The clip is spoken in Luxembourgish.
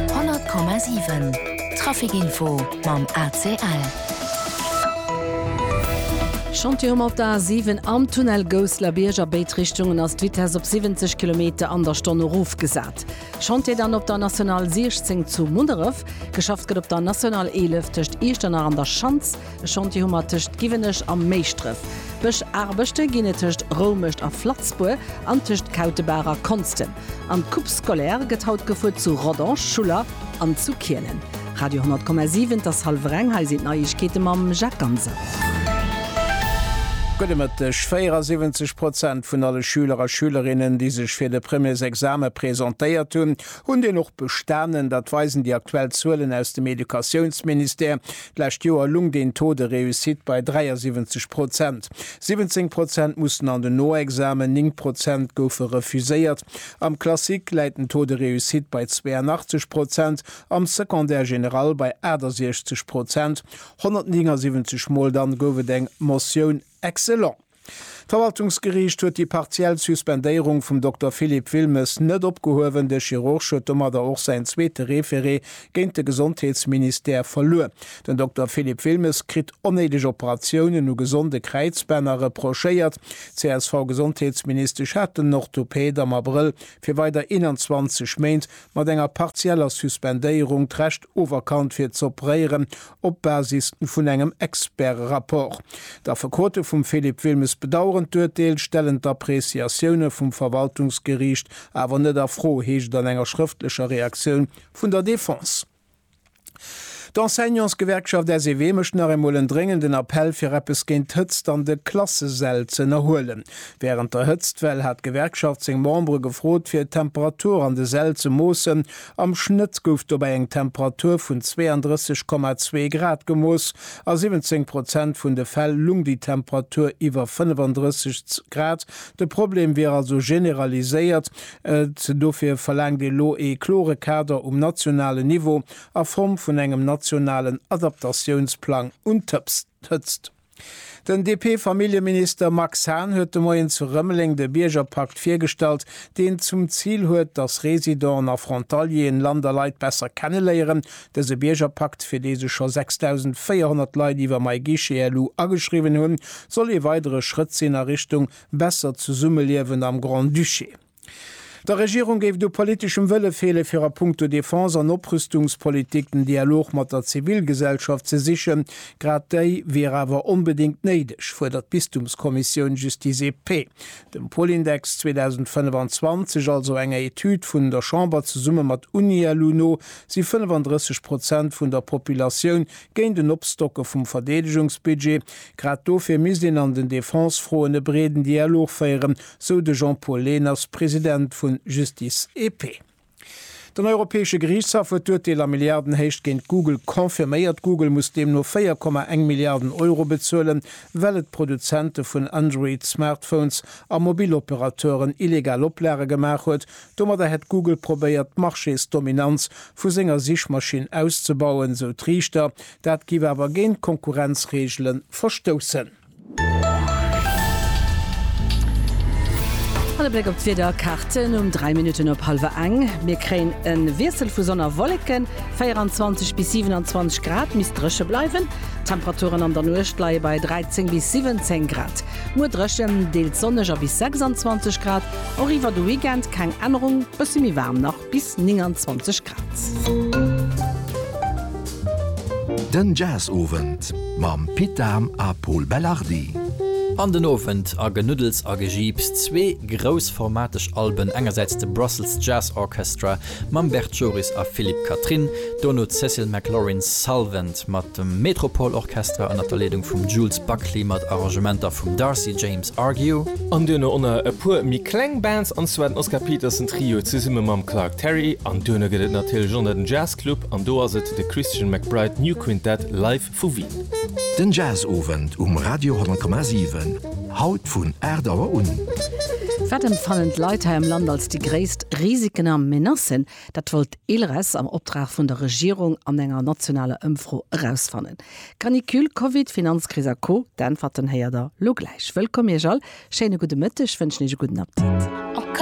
100,7 Trafic Info mam ACL. Chantier um op der A7 am Tunnel Gousseler Bierg, a béid Richtungen ass d'Vitess op 70 Kilometer an der Stonn erofgesat. Chantier dann op der National 16 zu Munneref. Geschafft gëtt op der National 11 tëscht Iechternach an der Schanz. E Chantier hu mer tëscht Giwenech a Méischdref, Bëschaarbechte ginn et tëscht Roumescht a Flatzbour an tëscht Kautebaach a Konstem an d'Coupe scolaire gëtt haut gefuer zu Rodange, Schuller an zu Kielen. Radio 10,7, et ass hallwer eng, hei sinn d'Neiegkeete mam Jacques Ganser. Gudde Mëtteg. 74 Prozent vun alle Schüler a Schülerinnen, déi sech fir de Premiersexame presentéiert hunn, hunn deen och bestanen. Dat weisen déi aktuell Zuelen aus dem Educatiounsministère. D'lescht Joer lung den Taux de réussite bei 73 Prozent. 17 Prozent mussen an den Noexamen, 9 Prozent goufe refuséiert. Am Classique läit den Taux de réussite bei 82 Prozent, am Secondaire général bei 68 Prozent. 179 Mol dann gouf et eng Motioun excellent. D'Verwaltungsgeriicht huet déi partiell Suspendéierung vum Dokter Philippe Wilmes net opgehuewen. De Chirurg huet domadder och säin zweete Referé géint de Gesondheetsministère verluer. Den Dokter Philippe Wilmes kritt onnéideg Operatiounen u gesonde Kräizbänner reprochéiert. D'CSV-Gesondheetsministesch hat den Orthopäd am Abrëll fir weider 21 Méint mat enger partieller Suspendéierung d'Recht oferkannt fir z'operéieren, op Basis vun engem Experterapport. D'Affekote vum Philippe Wilmes bedaueren d'Urteel, stellen d'Appreciatioune vum Verwaltungsgeriicht awer net a Fro, heescht et an enger schrëftlecher Reaktioun vun der Defense. D'Enseignantsgewerkschaft SEW mécht nach eemol en dréngenden Appell, fir eppes géint d'Hëtzt an de Klassesäll ze ënnerhuelen. Wärend der Hëtztwell hat d'Gewerkschaft seng Membere gefrot, fir d'Temperatur an de Säll ze moossen, Am Schnëtt gouf dobäi eng Temperatur vun 32,2 Grad gemooss. A 17 Prozent vun de Fäll lung déi Temperatur iwwer 35 Grad. De Problem wier also generaliséiert. Dofir verlaangt ee lo ee klore Kader um nationalen Niveau a Form vun engem nationalen Adaptatiounsplang un d'Hëtzt. Den DP-Familljeminister Max Hahn huet de Moien zu Rëmeleng de Biergerpakt virgestallt, deen zum Zil huet, datt Residenten a Frontalieren Land a Leit besser kenneléieren. Dëse Biergerpakt, fir dee sech scho 6.400 Leit iwwer MyGuichet elu ageschriwwen hunn, soll ee weidere Schrëtt sinn a Richtung besser Zesummeliewen am Grand-Duché. Der Regierung géif et u politeschem Wëlle feele fir a punkto Defense an Oprüstungspolitik den Dialog mat der Zivilgesellschaft ze sichen. Grad déi wier awer onbedéngt néideg, fuerdert d'Bistumskommissioun Justice et Paix. Dem Polindex 2025, also enger Etüd vun der Chamber zesumme mat Unielu no, si 35 Prozent vun der Populatioun géint en Opstocke vum Verdeedegungsbudget. Grad dofir misst een an den Defensefroen e breeden Dialog féieren, sou de Jean-Paul Lehners, President vu Justice et Paix. Den Europäesche Geriichtshaff huet d'Urteel a Milliardenhéicht géint Google confirméiert. Google muss deemno 4,1 Milliarden Euro bezuelen, well et Produzente vun Android-Smartphones a Mobiloperateuren illegal Oplage gemaach huet. Domadder hätt Google probéiert, d'Marchésdominanz vu senger Sichmaschinn auszebauen, sou d'Riichter. Dat géif awer géint d'Konkurrenzreegele verstoussen. An e Bléck op d'Wiederkaarten um 3 Minutten op hallwer eng. Mir kréien e Wiessel vu Sonn a Wolleken, 24 bis 27 Grad, misst dréche bleiwen. D'Temperaturen an der Nuecht leie bei 13 bis 17 Grad. Muer dréchen, deels sonneg a bis 26 Grad, och iwwer de Weekend keng Ännerung, bësse méi waarm nach. bis 29 Grad. Den Jazzowend mam Pit Dahm a Pol Belardi. An den Owend a genuddels a gejiips, zwee groussformateg Alben, engersäits de Brussels Jazz Orchestra mam Bert Joris a Philippe Catherine, dono d'Cécile McLorin's Salvent. mat dem Metropole Orchestra ënnert der Leedung vum Jules Buckley mat Arrangementer vum Darcy James Argue. An duerno ënner e puer méi kleng Bands, an zwar den Oscar Peterson Trio zesumme mam Clark Terry, an duerno gëtt et natierlech ënner den Jazz Club, an do ass et de Christian McBride New Quintet live vu Wien. Den Jazzowend um Radio 10,7, haut vun 8 Auer un. Wat empfannen d'Leit hei am Land als déi gréisst Risiken a Menacen? Dat wollt d'ILRES am Optrag vun der Regierung an enger nationaler Ëmfro erausfannen. Canicule, Covid, Finanzkris a Co. D'Äntwerten héiert der lo gläich. Wëllkomm Iech all, schéine gudde Mëtteg, wënschen Iech e gudden Aptit.